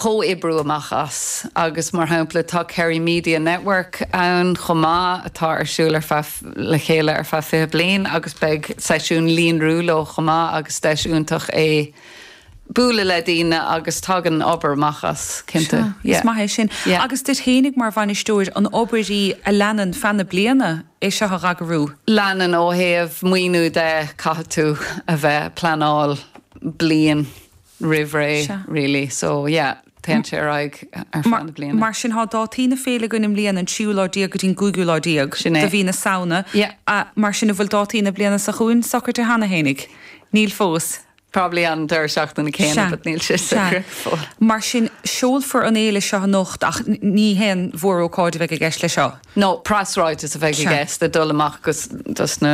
chomhoibriú amach as. Agus, mar shampla, tá Kerry Media Network ann chomh maith atá ar siúl ar feadh, le chéile ar feadh fiche bliain agus beidh seisiún líonrú leo chomh maith agus deis iontach é bualadh le daoine agus tagann obair amach as, cinnte. Sea. Is maith é sin. Yeah. Agus duit fhéinig mar bhainisteoir, an obair í a leanann feadh na bliana é seo a dh'eagrú? Leanann, ó thaobh maoiniú de caithfidh tú a bheith, ag pleanáil bliain roimh ré really so yeah téann sé ar aghaidh ar feadh na bliana. Mar sin tá dátaí na féile againn i mbliana, an tríú lá déag go dtí an gcúigiú lá déag de mhí na Samhna. Mar sin an bhfuil dátaí na bliana seo chugainn socraithe cheana fhéinig? Níl fós. Probably an deireadh seachtaine céanna but níl sé socraithe fós. Mar sin seolfar an fhéile seo anocht ach ní haon mhórócáid a bheidh i gceist leis seo. No, preasráiteas a bheidh i gceist ag dul amach dos na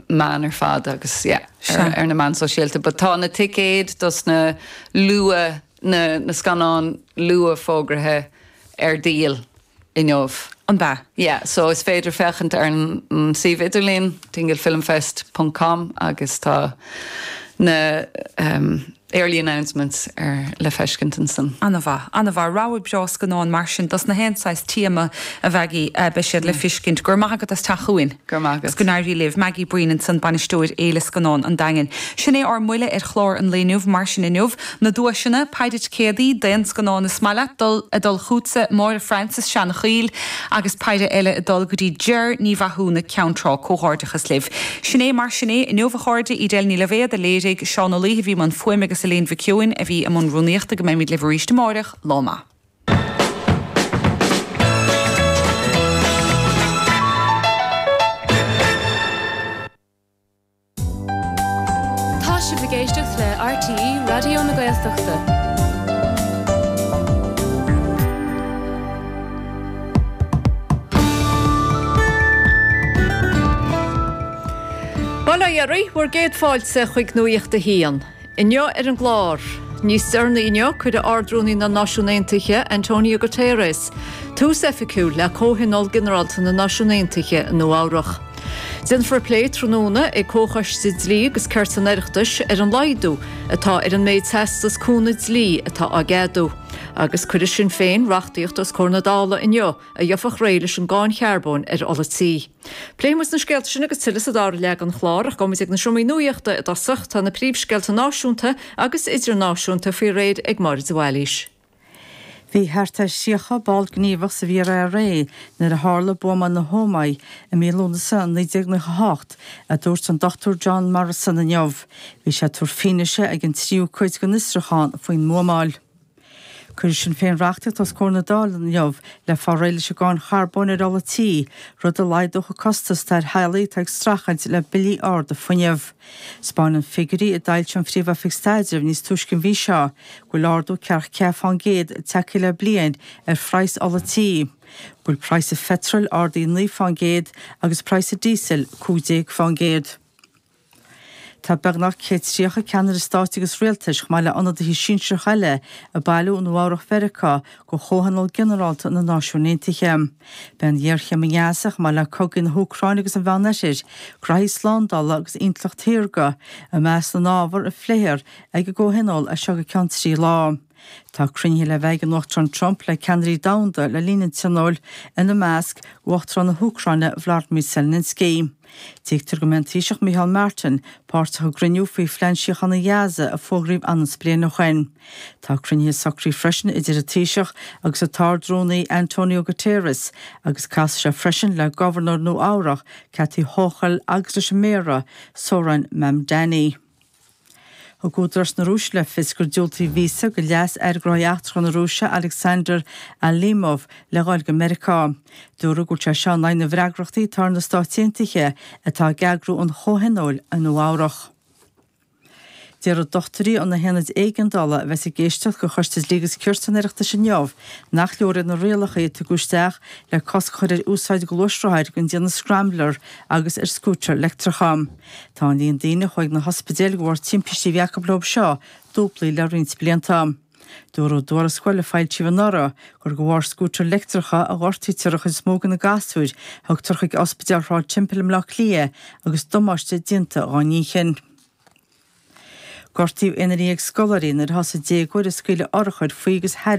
meáin ar fad agus ar na meáin sóisialta. But tá na ticéid dos na scannáin luath fógraithe ar díol inniu. Ab ea? Yeah, so is féidir féachaint ar an suíomh idirlín, dinglefilmfest ponc com agus tá na. Early announcements ar le feiscint ansan. Ana-mhaith, ana-mhaith. Rogha breá scannán mar sin. Des na haon saghas téama a bheidh i, beidh siad le feiscint. Go raibh maith agat as teacht chugainn. Go raibh maith agat. Is go n-éirí libh. Maggie Breen ansan, Bainisteoir Fhéile Scannán an Daingin. Sin é ár mbuille ar chlár an lae inniu, mar sin inniu. Na duaiseanna, peidhre ticéadaí, d'aon scannán is maith leat, dul, ag dul chughatsa, Máire Francis, Seanchoill, Agus peidhre eile ag dul go dtí Jer Ní Mhathúna, Ceann Trá, comhghairdeachas libh. Sin é mar sin é inniu a chairde, Edel Ní Loibhéad a léirigh, Seán Ó Laoithe a bhí i mbun fuaime agus Elaine Mhic Sheoin a bhí i mbun rúnaíochta. Go mbeidhmid libh arís amáireach. Lá maith. Tá sibh ag éisteacht le RTÉ Raidió na Gaeltachta. Bail ó Dhia oraibh, 'sé bhur gcéad fáilte chuig Nuacht a hAon. Inniu ar an gclár. Níos deireanaí inniu cuirfidh Ard-Rúnaí na Náisiún Aontaithe, Antonio Guterres, tús oifigiúil le Comhthionól Ginearálta na Náisiún Aontaithe i Nua-Eabhrac. Déanfar plé tráthnóna ag Comhchoiste Dlí agus Cirt an Oireachtais ar an laghdú atá ar an méid teastas cúnaimh dlí atá á gceadú. Agus cuirfidh Sinn Féin reachtaíocht os comhair na Dála inniu a gheofadh réidh leis an gcáin charbóin ar ola tí. Pléifidh muid na scéalta sin agus tuilleadh sa dara leath den chlár, ach gabhaimid ag na seomraí nuaíochta i dtosach. Tá na príomhscéalta náisiúnta agus idirnáisiúnta faoi réir ag Máire de Bhailís. Bhí thart ar thríocha ball gníomhach sa bhFíor-IRA nuair a tharla buamáil na hÓmaí i mí Lúnasa 1998, a dúirt an Dr John Morrison inniu. Bhí sé ag tabhairt fianaise ag an tríú cuid den fhiosrúchán faoin mbuamáil. Cuirfidh Sinn Féin reachtaíocht os comhair na Dála inniu le fáil réidh leis an gcáin charbóin ar ola tí, rud a laghdódh an costas atá ar theaghlaigh atá ag streachailt le billí arda fuinnimh. 'Spáineann figiúirí a d'fhoilsigh an Phríomh-Oifig Staidrimh níos túisce an mhí seo go bhfuil ardú 44 fán gcéad tagtha le bliain ar phraghas ola tí, go bhfuil praghas an pheitril ardaithe 9 fán gcéad agus praghas an díosail 15 fán gcéad. Tá beagnach 130 ceannaire stáit agus rialtais, chomh maith le ionadaithe sinsearacha eile, ag bailiú i Nua-Eabhrac Mheiriceá do Chomhthionól Ginearálta na Náisiún Aontaithe. Beidh an ghéarchéim i nGaza, chomh maith le cogaí na hÚcráine agus an Mheánoirthir, graithí slándála agus intleacht shaorga, i measc na n-ábhar a phléifear ag an gComhthionól as seo go ceann trí lá. Tá cruinnithe le bheith ag an Uachtarán Trump le ceannairí domhanda le linn an Tionóil, ina measc, Uachtarán na hÚcráine Volodymyr Zelensky. Tuigtear go mbeidh an Taoiseach Micheál Martin páirteach i gcruinniú faoi phlean síochána Gaza a fógraíodh ionann's bliain ó shoin. Tá cruinnithe socraithe freisin idir an Taoiseach agus an tArd-Rúnaí Antonio Guterres agus casfaidh sé freisin le Gobharnóir Nua-Eabhrach Kathy Hochul agus leis an Méara Zohran Mamdani. Thug údaráis na Rúise le fios gur diúltaíodh víosa do Leas-Aire Gnóthaí Eachtracha na Rúise Aleksandr Alimov le dhul go Meiriceá. Dúradh go bhfuil sé seo in aghaidh na bhfreagrachtaí atá ar na Stáit Aontaithe, atá ag eagrú an Chomhthionóil i Nua-Eabhrach. Déarfaidh dochtúirí ó na haonaid éigeandála a bheas ag éisteacht de Choiste Dlí agus Cirt an Oireachtais inniu nach leor iad na rialacha a tugadh isteach le cosc a chur ar úsáid gluaisrothair den déanamh scrambler agus ar scútair leictreacha. Tá an líon daoine a chuaigh na hospidéil de bharr timpistí a bhí acu leo seo dúblaithe le roinnt blianta. Dúradh i dtuarascáil a foilsíodh anuraidh gur de bharr scútair leictreacha a ghortaítear an chuid is mó de na gasúir a thugtar chuig Ospidéal Shráid Temple i mBleá Cliath agus damáiste déanta dá n-inchinn. Gortaíodh aonar dhéag scoláirí nuair a thosaigh déagóir ag scaoileadh urchair faoi agus thairis